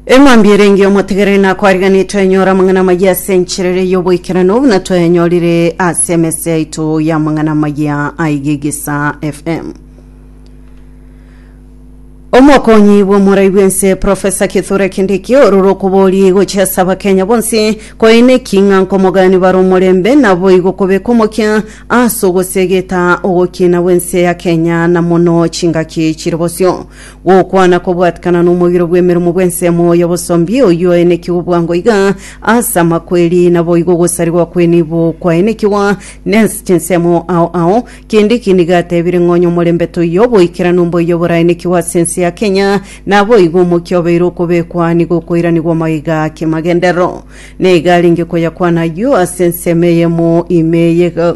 Emwambi erenge omotegereri na kwariganire twenyora amang'ana amayia ase enchera ere y'oboikeranu buna twayanyorire ase emese yaito y'amang'ana amayia aigegesa FM. Omokonyi bw'omorai bw'ense Profesa Kithure Kindiki ororo okobori gochia ase abakenya bonsi koine eking'a nkomogani bare omorembe naboigo kobeka omokia ase ogosegeta ogokina bw'ense ya Kenya na mono chingaki chiri bosio. Gokwana kobwatikana nomogiro bw'emeromo bw'ensemo y'obosombi, oyio oenekigwe bwango iga ase amakweri, naboigo ogosarigwa kw'enibo kwaenekigwa nense chinsemo ao ao. Kindiki nigo atebire ng'a onyomorembe toiyo oboikeranu mboiyo boraenekigwe ase ense ya Kenya, naboigo omokia obeire okobekwa nigo okoiranigwa maiga kimagenderero. Naiga arenge koyakwana ayio ase ensemo eyemo ime eyega.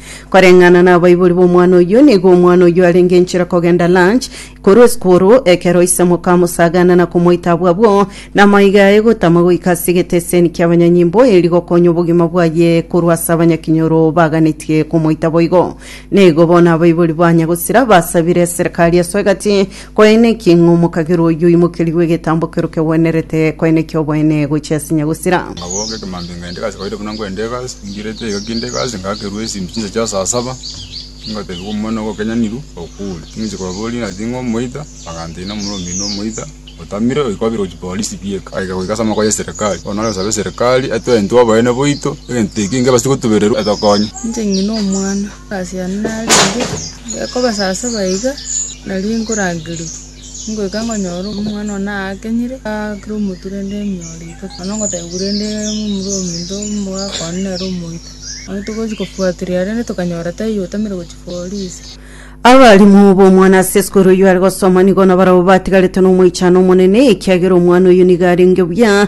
Koreng'ana nabaibori b'omwana oyio, nigo omwana oyio arenge inchera kogenda lunch korwa esukuru, ekero isemuka amosagana na komoita abwo abwo, na amaiga aye gotama goika ase egeteseni ki'abanyanyimbo, erio gokonya obogima bwaye korwa ase abanyakinyoro baganetie komoita boigo. Nigo bono abaibori ba Nyagosira basabire eserekari esoe gati, Koeneki ng'omokabera oyio oimokerigwe egetambo ekero kegwenerete koeneki oboene gochia ase nyagosira. Ngabooka ekemambia ngenda egasi kawaida buna ngwenda egasi, mbirete iga kinde egasi ngakerwa esimi chinsa chia saa saba, ngotebiwa omomura nigo okenyanirwe okure. Ng'inche kobaboria ng'a ting'o omoita, baganteina omomura omoino omoita otamire oika obere gochia polisi bieka. Agaika goika ase amaboko ya eserekari, bono nare gosabe eserekari etwe intwe oboene boito egento ekio ngebasie gotubererwa etokonye. Inche ng'ina omwana, Ase ayio narenge gekoba saa saba iga, nario nkorangerwa, ngoika nkonyora omwana one aakenyire, aakire omotwe rende emioro iga, nonya ngotebiwa rende momura ominto omogaka one nere omoito. Nario togochia kofuatiria rende tokanyora taiyo otamire gochia polisi. Abalimu b'omwana ase esukuru oyio are gosoma nigo nabarabwo batigaretwe nomoichano omonene, ekiagera omwana oyio nigo arenge buya.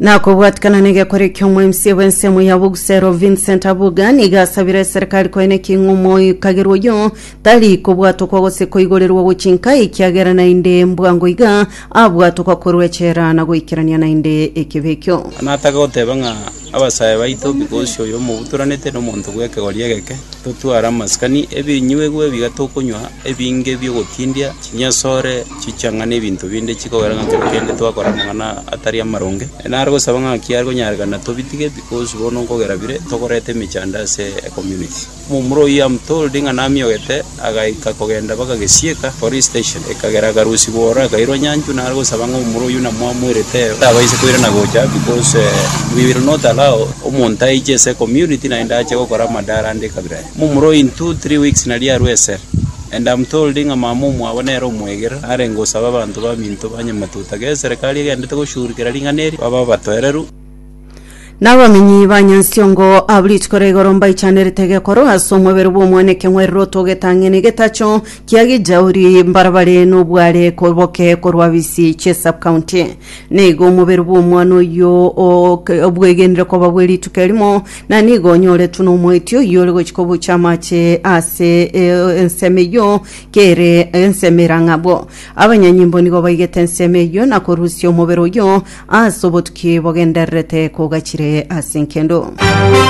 Nakobwatikana negekore ki'omoemsie bw'ensemo ya Bogusero Vincent Abuga niga asabire eserekari koe neking'u omoikagerwa oyo tari kobwatokwa gose koigorerwa gochinka ekiagera naende mbwango iga abwatokwa korwa echela na goikerania naende ekebe ekio. Natake goteba ng'a Abasae baito, Bigosi oyo mobutoranete nomonto bw'ekegori egeke, totware amasikani, ebinyuegwa ebiga tokonywa, ebinge bi'ogotindia, chinyasore, chichanga, na ebinto binde chikogera ng'a kero kende twakora amang'ana atari amaronge. Nare gosaba ng'aki are konyarekana tobitige, Bigosi bono nkogera bire, tokoreta emechando ase ecommunity. Momura oyio amotoorire ng'a namiogete, agaika kogenda mpaka gesiika, police station, ekagera akarusibwa ore, akairwa nyanchwa. Nare gosaba ng'a momura oyio namwamoerete tabaisa koirana gocha, because we will not allow omonto aiche ase ecommunity naende ache gokora amadara ande ekabira yaye. Momura oyio in two, three weeks nari arue esere, and amotoorire ng'a mama omwabo nere omwegera narenge gosaba abanto baminto ba nyamatuta, gesa eserikari egendete goshughulikera ring'ana eri, babe abatoereru. Nabamenyi ba Nyansiongo abwo rituko ria igoro mbaichanerete gekorwa ase omobere bw'omwana ekeng'werero togetang'ene getacho kia Gijauri mbarabare nobware koboke korwa bisi chie subcounty. Nigo omobere bw'omwana oyio ok- obwegenire koba bwe rituko erimo na nigo onyoretwe nomoiti oyio ore gochika obochia amache ase e- ensemo eyio kere ensemo erang'abwo. Abanyanyimbo nigo baigete ensemo eyio na korusia omobere oyio Ase obotuki bogendererete kogachire ase enkendo.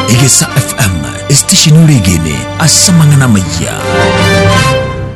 Egesa FM, esitesheni oregene ase amang'ana amayia.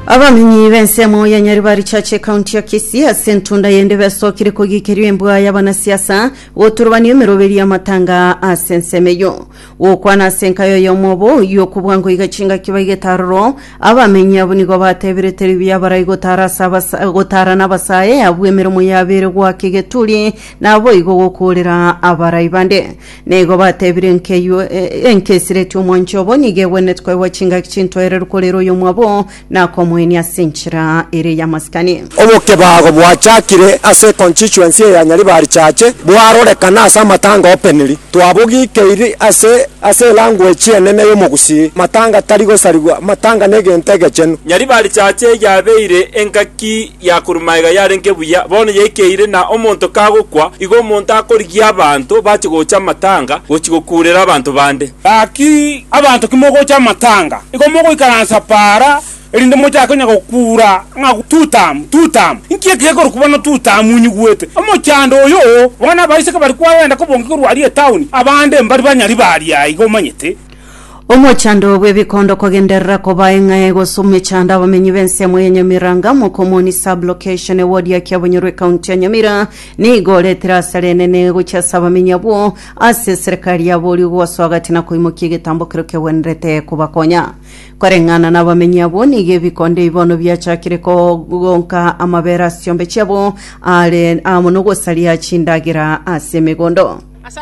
Abamenyi b'ensemo ya Nyaribari Church ekaunti ya Kisii ase entunda yende besokire kogikerwa embwa y'abanasiasa goturubanio emeroberi y'amatanga ase ensemo eyo. Gokwana ase enkayo y'omobo oyio okobua ngoiga chingaki baigete aroro, abamenyi abwo nigo batebire Teribi abarai gotara ase abasa- gotara nabasae abwo emeremo yabeire goaka egeturi, naboigo gokoorera abarai bande. Na igo batebire enkeywo- e- e- enkesireti omwancho obo nigo egwenerete koegwa chingaki chintoereru korera oyomwabo, nakomoenia ase enchera ere y'amasikani. Obokebago bwachakire ase econstituency eya Nyaribari Chache bwarorekana ase amatanga openly. Twabogikeiri ase ase elanguage enene y'omogusii. Matanga tari gosarigwa, matanga negento egechenu. Nyaribari Chache yabeire engaki ya korwa magega yarenge buya, bono yaikeire, na omonto kagokwa, igo omonto akorigia abanto bache gocha amatanga gochia gokuurera abanto bande. Gaki abanto kimogocha amatanga, igo mogoikaransa para, erinde mochake onye gokuura ng'a Tutamu, Tutamu. Inki eke gekorokwa bono Tutamu onyigwete? Omochando oyo! Bono abaiseke bari kwagenda kobonga korwa aria etaoni, abande mbari banyari b'aria iga, omanyete. Omochando bw'ebikondo kogenderera koba eng'ae gose omechando abamenyi b'ensemo ya Nyamiranga Mokomoni Sub-Location ewodi ya Kiabonyoro ekaunti ya Nyamira nigo oretire asara enene gochia ase abamenyi abwo ase serikali ya borio gosoa gati na koimokia egetambo kerio kegwenerete kobakonya koreng'ana n'abamenyi abwo nigo ebikondo ebi bono biachakire kogonka amabere ase chiombe chiabo are amo nogosaria chindagera ase emegondo